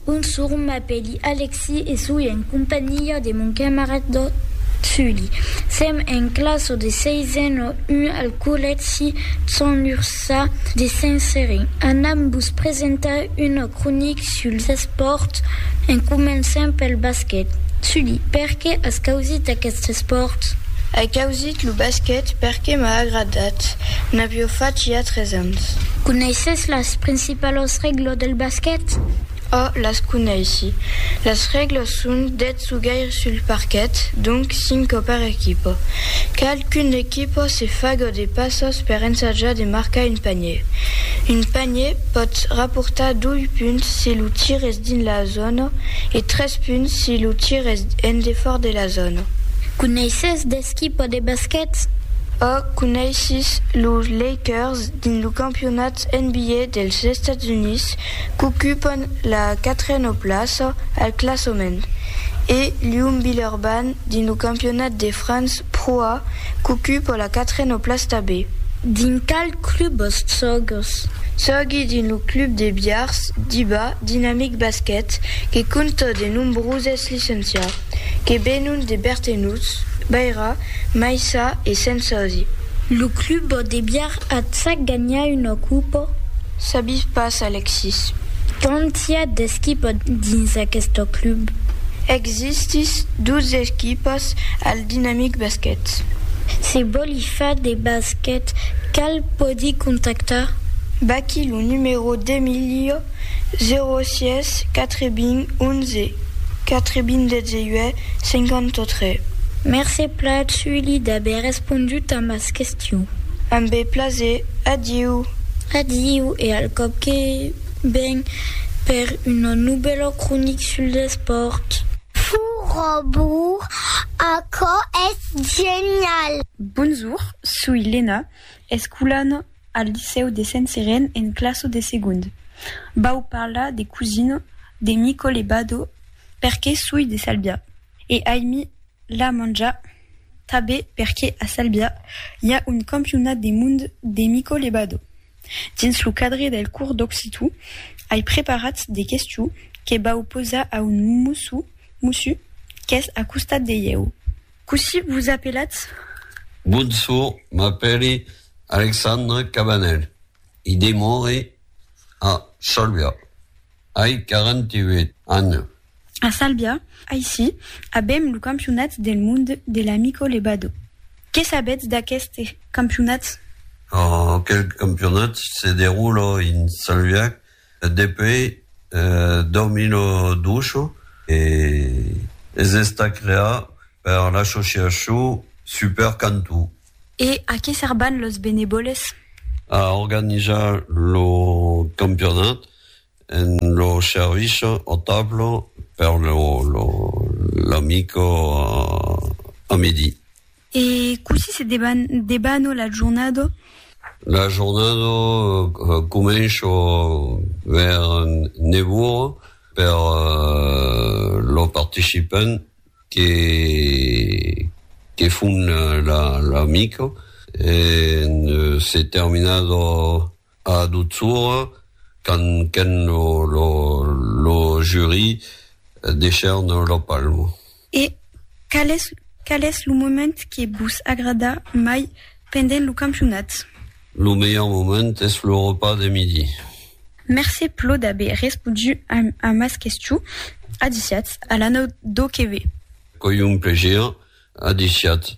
Bonsoir, m'apèli Alexi e soi en companhiá de mon camarad Sully. Sèm en classa de seisen a un al collègi Sant Ursà de Saint-Serin. Anam vos presentar una cronic suls espòrts en començant pel basquet. Sully, perqué as causit aquest espòrt? Ai causit lo basquet perqué m'a agradat. N'avió fach ja tres ans. Coneisses las principalas Pas las règlas del basquet? A, las coneissi. Las règlas son, dètz o gaire sul parquet, donc cinco per equipa. Cal qu'una equipa se faga de passas per ensajar de marcar un panier. Un panier pòt raportar dois punts si lo tir es dins la zòna e tres punts si lo tir es en defòrt de la zòna. Coneisses d'esquipa de basquet? A, coneissis los Lakers. Dins lo campionat NBA dels Estats Units, qu'ocupan la quatrena plaça al classament, e Lyon Billerban dins lo campionat de França Pro A, qu'ocupa la quatrena plaç tabé. Dins qual club vos sògues? Sògui dins lo club de Biars, Diba Dynamic Basket, que compta de nombroses licencias. que venon de Bertenuts, Baira, Maissa e Sensasi. Lo club de biar at sa ganha una copa? Sabis pas, Alexis. Quand i a d'esquipas dins aqueste club? Existís dos esquipas al Dinamic Basquet. Se vòli far de basquet, cal pòdi contactar? Vaquí lo numero d'Emilio. 06 80 11 98 53. Mercé Plat Sully d'aver respondut a mas questions. Amb plaser. Adiu. Adiu e al còp que ven per una novèla cronic sul despòrt. Furrobur, aquò es genial! Bonjour, soi Lena, escolana al licèu de Sent Seren en classo de segond. Vau parlar de Cousino, de Nicole Bado, perque soi de Salbia. E aimi la manja tabe perque a Salbia i a un campionat de mond de Nicole Bado. Dins lo cadre del cors d'occitu ai preparat de questions que vau posar a un mossu, mossu, qu'es a costat de ieu. Cossí vos apelatz? Bonsoir, m'apèli Alexandre Cabanel e demore a Salvià. Ai 48 ans. A Salvià, aicí, avèm lo campionat del monde de l'Amico Lebado. Qué sabètz d'aqueste campionat? Aquel campionat se derula en Salvià. Depuei Domino Dusho e es estat creat per l'associacion Super Cantó. E a qué serban los benevòles? A organizar lo campionat en lo servici au tableau per lo l'amico a midi. E cossí se debano la jornada? La jornada comença vers 9 ora per lo participant que que fon la mica e se terminada A Dutsoura, quand qu'en lo jury decèrne lo palmo. E qual es qual es lo moment que vos agrada mai pendent lo campionat? Lo melhor moment es lo repas de midi. Mercé plo d'aver respodu a mas questiu. A disiatz, a l'anau do que ve. Qu'oi un plaisir. A disiatz.